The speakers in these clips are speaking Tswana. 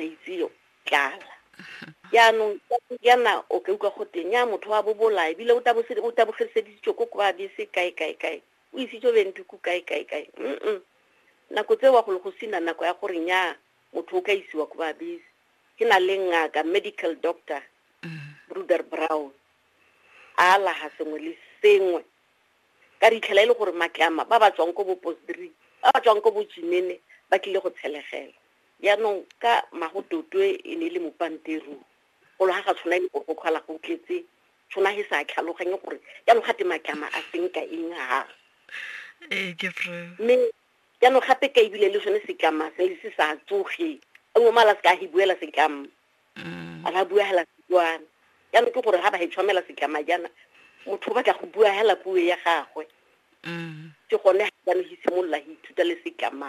itse tlala jaanong jaana o ka utlwa go teng ya motho wa bobola ebile o tabogediseditso ko kwa bese kae kae kae o isitso bendiko kae kae kae mm nako tse wa go le go sina nako ya gore nya motho o ka isiwa ko ba bese ke na le ngaka medical doctor bruder brown a alaga sengwe le sengwe ka ditlhela e le gore matlama ba ba tswang ko bo postdree ba ba tswang ko bo jimene ba tlile go tshelegela Jaanong ka Magototwe e ne e le mopanteru, golo ga ga tshwana e le bogokgwala go tletse, tshwana he sa tlhaloganye gore jaanong ga te matlama a seng ka eng ha. Ee, ke true. Mme jaanong gape ka ebile le sone setlama se le se sa tsoge. A nngwe mala se ka he buela setlama. Mm. A ba bua hela Setswana. Jaanong ke gore ga ba he tshwamela setlama jaana, motho o batla go bua hela puo ya gagwe. Mm. Ke gone jaanong he simolola he ithuta le setlama.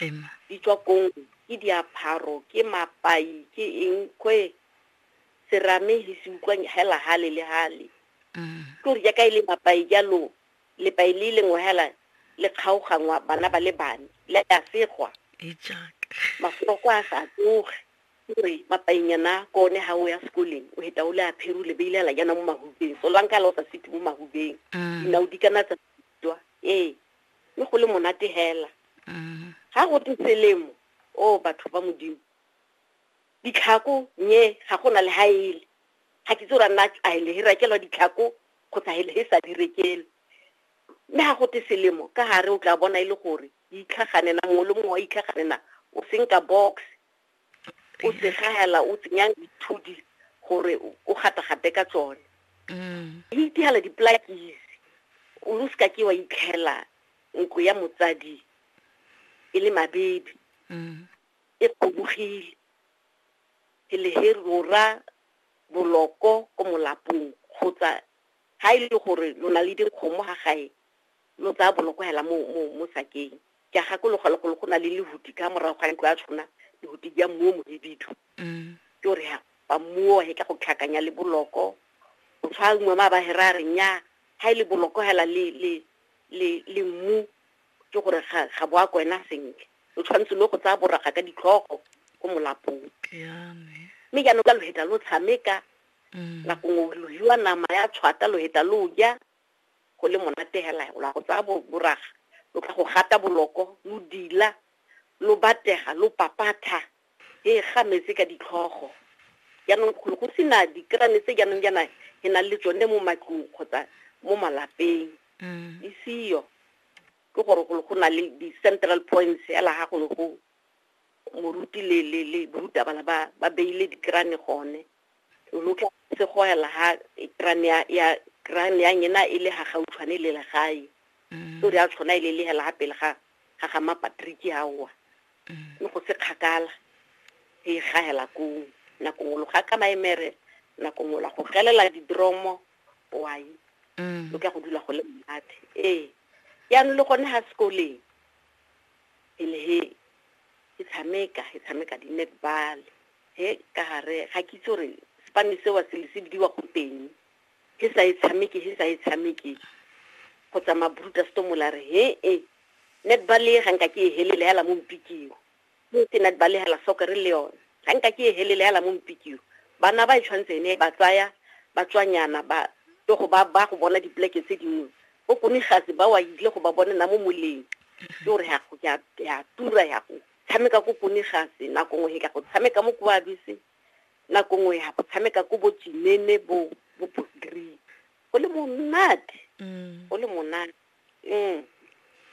Ema. Di tswa kong? Ke diapharo, ke mapai, ke eng? Kwe serame he se utlwa hela hale le hale. Ke gore jaaka e le mapai jalo, lepai le lengwe hela le kgaogangwa bana ba le bane, le a segwa. Mafoko a sa tsoge. Ke gore mapainyana ko one ha o ya sekoleng, o heta o le aphere, o le beile hela jaana mo mahubeng. Solanka le o sa se mo mahubeng, dinao di kana tsa tswa. Ee, mme go le monate hela mm. ga go te selemo o batho ba modimo ditlhako nye ga go na le ga ele ga ke tse ra nna a ele he rekelwa ditlhako kgotsa hele he sa direkele mme ga go te selemo ka gare o tla bona e le gore itlhaganena mongwe le mongwe wa itlhaganena o senka box o segagela o tsenya dithudi gore o gata-gate ka tsone mm. le itigela di-plakis o lo seka ke wa itlhela nko ya motsadi e le mabebe mm. e kgobogile ke leherora boloko ko molapong kgotsa ga e le gore lo na le dikgomo ga gae lo tsaya bolokogela mo mo mo sakeng ke a gakologa le golo go na le lehuti ka morago ga ntlo a tshwana lehuti ja mmu o mohibidu mm. ke gore ha ba mmuo he ka go tlhakanya le boloko o tshwa nngwe ma ba hera a re nya ha e le boloko hela le le le le mmu ke gore ga ga boa ko ena sentle o tshwanetse lo go tsaya boraga ka ditlhogo ko molapong mme jaanong ka loheta lo tshameka mm. nako ngwe lohiwa nama ya tshwata loheta lo ja go le monate hela o la go tsaya boraga lo tla go gata boloko lo dila lo batega lo papatha e ga metse ka ditlhogo jaanong golo go sena dikerane tse jaanong jaana e nang le tsone mo matlong kgotsa mo malapeng mm. e seyo ke gore golo go na le di-central points fela ga golo go moruti le le le borutaba ba ba beile dikerane gone lo tla se go ela ha kran ya ya kran ya ngena e le ha ga utshwane le le gae mm. o re a tshwana ile e le hela ha pele ga ga ga ma Patrick ha wa mm. no go se khakala e ga hela ko na ko lo ga ka maemere na ko ngola go gelela di dromo wa yi mm. lo ka go dula go le mmathe eh ya no le gone ha sekoleng e le he e tshameka e tshameka di netball He ka gare ga ke itse gore sepane seo se le se bidiwa go teng he sa e tshameke he sa e tshameke go tsamaya bruta stomola re he e netball e ga nka ke e helele hela mo mpikiwa mo ke netball e hela soccer le yone ga nka ke e helele hela mo mpikiwa bana ba e tshwanetse ene ba tsaya ba tswanyana ba to go ba ba go bona dipleke tse dingwe bo kone gase ba wa ile go ba bona na mo moleng ke gore ya tura ya go tshameka ko konigase nako nngwe ka go tshameka mo koabise nako nngwe ya go tshameka ko bo jinene bo bo bosdrip go le monate mm. go le monate mm.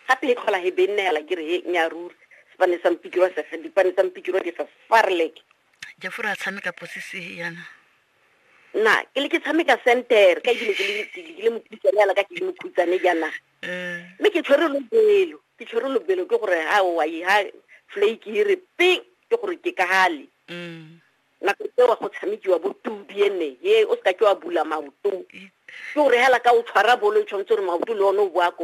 gape e tlhola he benela ke re he nya ruri sepane sa mpikirwa sefe dipane tsa mpikirwa di fa farlek jafore a tshameka posise yana na ke le ke tshameka center ka ebile ke le ke le mokhutsane yana ka ke le mokhutsane jana mme ke tshwere lobelo ke tshwere lobelo ke gore ha wa yi ha flake e re ping ke gore ke ka hale mm. nako tsewa go tshamekiwa bo tubi ene he o seka ke wa bula maoto ke gore hela ka o tshwara bolo e tshwanetse gore maoto le one o boa ko